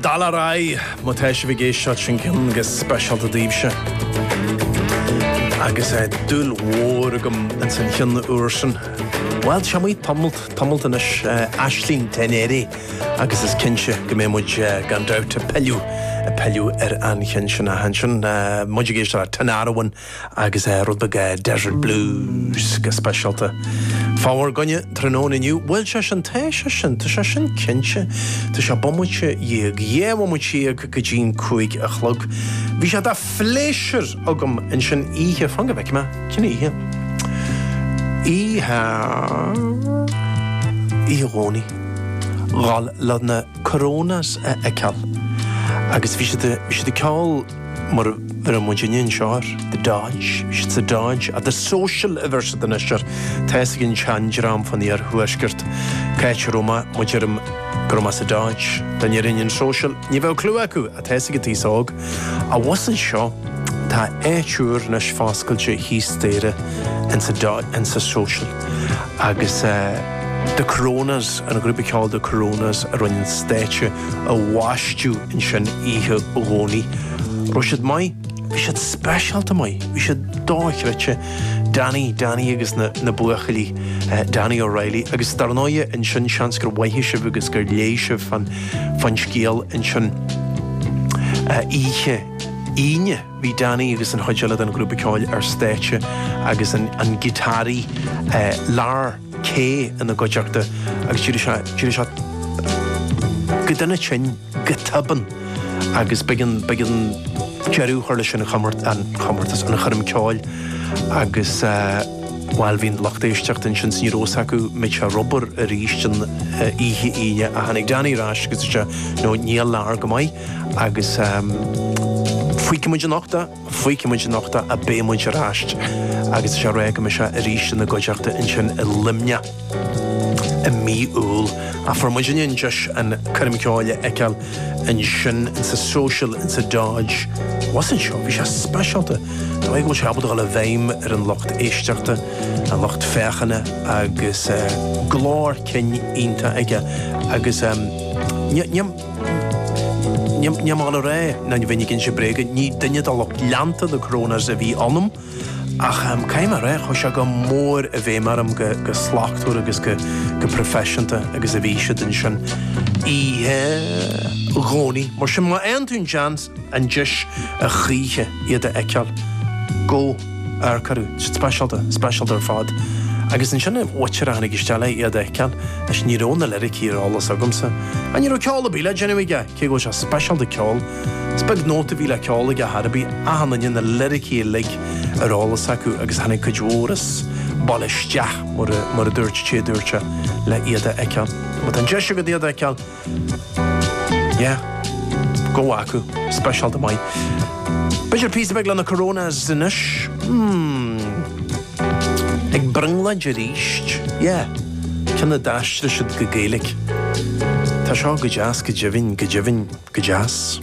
Dul ar aghaidh! Má tá sibh ag éisteacht, sin ceann go speisialta daoibhse. Agus dúil mhór agam ins an cheann úr sin. Bhuel, tá sé amuigh tamalt, tamalt anois, Aisling Dé Néirí, agus is cinnte go mbeidh muid gan dabht ag pilleadh, ag pilleadh ar an cheann sin. Ach ansin, muid ag éisteacht le Tinariwen. agus rud beag Desert Blues go speisialta fá bhur gcoinne tráthnóna inniu. Bhuel, sé sin, tá sé sin, tá sé sin cinnte. Tá sé bomaite dhéag, dhá bhomaite dhéag go dtí'n cúig a chlog. Bhí sé de phléisiúr agam ansin oíche, fan go bhfeicfidh mé, cén oíche? Oíche. Oíche Dhomhnaigh a dhul le na Coronas a fheiceáil agus bhí siad, bhí siad ag ceol, mar a bheir muidinne anseo air, The Dodge, The Dodge ach The Social a bheir siad anois air, tá fhios ag an tseandream fán iarthuaisceart cáit a raibh mé má deirim go raibh mé sa Dodge, dá ndéarfainn an Social, ní bheadh clue acu, ach tá fhios ag an t-aos óg, abhus anseo, tá áit úr anois foscailte thíos staighre in sa Dodge, in sa Social, agus eh, The Coronas, an grúpa ceoil The Coronas a rinne an stáitse a bhaisteadh, ansin oíche Dhomhnaigh. Raibh siad maith? Bhí siad speisialta maith. Bhí siad dochreidte. Danny, Danny agus na, na buachaillí, Danny O'Reilly. Agus dar ndóighe ansin seans gur mhoithigh sibh agus gur léigh sibh fán, fán scéal ansin. Oíche Aoine bhí Danny agus an chuid eile den ghrúpa ceoil ar stáitse agus an, an giotáraí, Lar. Kaye ina gcuideachta agus d'éirigh sé go dona tinn go tobann agus b'éigean deireadh a chur leis an chomórtas, an choirm ceoil agus bhuel bhí an lucht éisteachta ansin ní raibh fhios acu muid ag labhairt arís an oíche Aoine ach tháinig Danny ar ais agus dúirt sé no níl Lar go maith agus fuígfidh muid anocht é. Fuígfidh muid anocht é, beidh muid ar ais agus is é rá go mbeidh sé arís ina gcuideachta ansin i Luimneach i mí Iúil. Ach fuair muidinne an deis an coirm ceoil a fheiceáil ansin insa Social insa Dodge abhus anseo. Bhí sé speisialta, an dóigh go bhfuil sé ábalta a dhul i bhfeidhm ar an lucht éisteachta, an lucht féachana agus glór cinn iontach aige agus ní, ní, Ní maith liom a rá ná bheinn ag inse bréige, ní duine de lucht leanta The Coronas a bhí ionam, ach caithfidh mé a rá, chuaigh sé go mór i bhfeidhm orm chomh slachtmhar agus chomh proifisiúnta agus a bhí siad ansin oíche Dhomhnaigh. Mar sin, má fhaigheann tú an seans, an deis a choíche iad a fheiceáil, go, amharc orthu, tá siad speisialta, speisialta ar fad. Agus ansin an fear a tháinig isteach le iad a fheiceáil, anois ní raibh na liricí ar eolas agamsa, ach ní raibh ceol ar bith le déanamh aige, cé go bhfuil sé speisialta ceol, 's beag nóta a bhí le ceol aige ar bith, achan nduine na liricí uilig ar eolas acu agus tháinig cuid mhór an baile isteach mar a, mar a dúirt sé, dúirt sé, le iad a fheiceáil. Má tá an deis agat iad a fheiceáil, Yeah. Gabh chucu. Speisialta. Maith. B'fhéidir píosa beag leis na Coronas anois. Hmm. Ag brionglóid aríst. Yeah. Ceann a d'aistrigh siad go Gaeilge. Tá seo go deas go deimhin, go deimhin go deas.